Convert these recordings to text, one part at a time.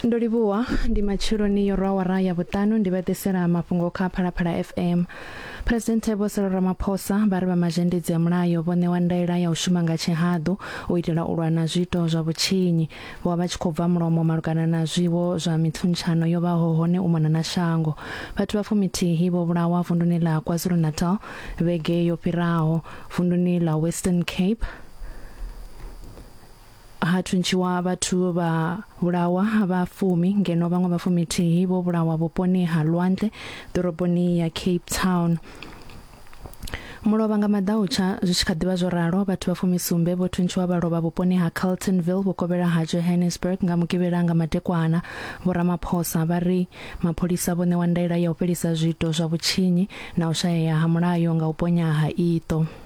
ndo livhuwa ndi matsheloni yo rwa wara ya vhuṱanu ndi vha ḓisela mafhungo kha phalaphala fm phuresidenthe vho selo ramaphosa vha ri vha mazhendedzi a mulayo vho ṋewa ndaela ya u shuma nga tshihaḓu u itela u lwa na zwiito zwa vhutshinyi vho vha vha tshi khou bva mulomo malugana na zwiwo zwa mithuntshano yo vhaho hone u mona na shango vhathu vha fumithihi vho vhulawa vunduni ḽa kwazulu-natal vhege yo fhiraho vunduni ḽa western cape ha thuntshiwa vhathu vha vhulawa vha fumi ngeno vhaṅwe vha fumithihi vho vhulawa vhuponi ha lwantle ḓoroboni ya cape town mulovha nga maḓautsha zwi tshi kha ḓivha zwo ralo vhathu vha fumisumbe vho thuntshiwa vha lovha vhuponi ha carltonville vhukovhela ha johannesburg nga mugivhela nga madekwana vhoramaphosa vha ri mapholisa vho ṋewa ndaela ya u fhelisa zwiito zwa vhutshinyi na u shayea ha mulayo nga u ponya ha iṱo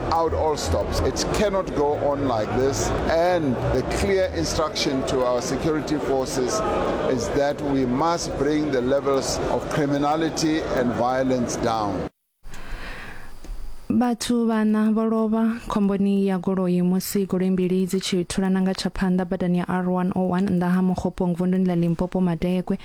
out all stops. It cannot go on like this. And the clear instruction to our security forces is that we must bring the levels of criminality and violence down. vhathu vhana vho lovha khomboni ya goloi musi goloi mbili dzi tshi thulana nga tsha phanḓa badani ya r101 nnḓa ha mukhopong vunduni ḽa limpopo madekwe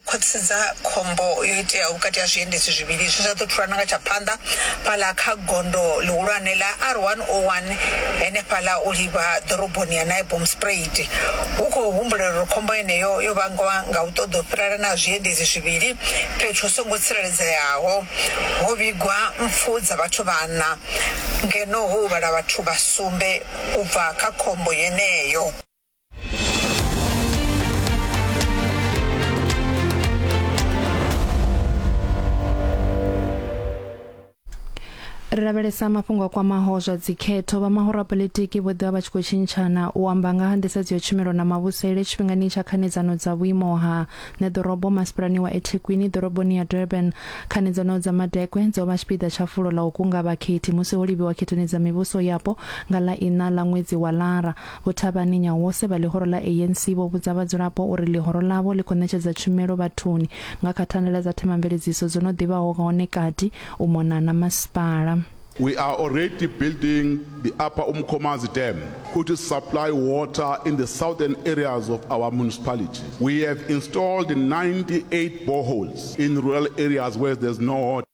U khwaṱhisedza khombo yo iteaho vhukati ha zwiendedzi zwivhili zwe zwa ḓo thulana nga tsha phanḓa fhaḽa kha gondo ḽihulwane ḽa R101 henefhaḽa u livha ḓoroboni ya Naibomspruit, hu khou humbulelwa uri khombo yeneyo yo vhangwa nga u ṱoḓa u fhirelana ha zwiendedzi zwivhili fhethu hu songo tsireledzeaho. Ho vhigwa mpfu dza vhathu vhaṋa ngeno ho huvhala vhathu vha sumbe u bva kha khombo yeneyo. ri lavhelesa mafhungo a kwamaho zwa dzikhetho vha mahorapolitiki vho ḓivha vha tshi khou tshintshana u amba nga ha nḓisedzo ya tshumelo na mavhusele tshifhingani tsha khanedzano dza vhuimo ha ṋeḓorobo masipalani wa ethekwini ḓoroboni ya durban khanedzano dza madekwe dzo vha tshipiḓa tsha fulo ḽa u kunga vhakhethi musi ho livhiwa khethoni dza mivhuso yapo nga ḽa iṋa ḽa ṅwedzi wa lara Vho Thabani Nyawose vha ḽihoro ḽa ANC vho vhudza vhadzulapo uri ḽihoro ḽavho ḽi khou ṋetshedza tshumelo vhathuni nga kha thandela dza themamveledziso dzo no ḓi vhaho hone kati u mona na masipala. We are already building the Upper Umkhomazi Dam which supply water in the southern areas of our municipality. We have installed 98 boreholes in rural areas where there's no water.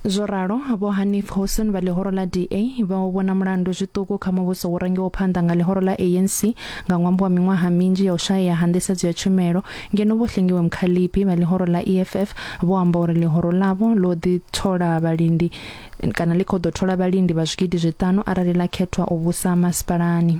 Zwo ralo, Vho Hanif Hoosen vha ḽihoro ḽa DA vha u vhona mulandu zwiṱuku kha muvhuso wo rangiwaho phanḓa nga ḽihoro ḽa ANC nga ṅwambo wa miṅwaha minzhi ya u shayea ha nḓisedzo ya tshumelo, ngeno Vho Hlengiwe Mkhaliphi vha ḽihoro ḽa EFF vho amba uri ḽihoro ḽavho ḽo ḓi thola vhalindi kana ḽi khou ḓo thola vhalindi vha zwigidi zwiṱanu arali ḽa khethwa u vhusa masipalani.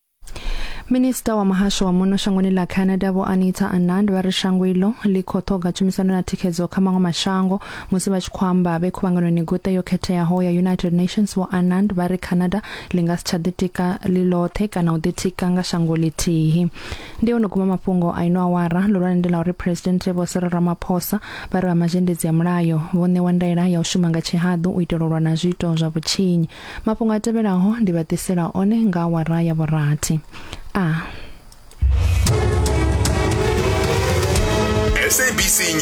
Minista wa muhasho wa muno shangoni ḽa Canada vho Anita Anand vha ri shango iḽo ḽi khou ṱhoga tshumisano na thikhedzo kha maṅwe mashango musi vha tshi khou amba vhe khuvhanganoni guṱe yo khetheaho ya United Nations vho Anand vha ri Canada ḽi nga si tsha ḓitika ḽi ḽoṱhe kana u ḓitika nga shango ḽithihi ndi ono guma mafhungo a ino awara ḽihulwane ndi ḽa uri president Vho Cyril Ramaphosa vha ri vha mazhendedzi ya mulayo vho ṋewa ndaela ya u shuma nga tshihaḓu u itela u lwa na zwiito zwa vhutshinyi Mafhungo a tevhelaho ndi vha ḓisela one nga awara ya vhurathi. A. SABC News.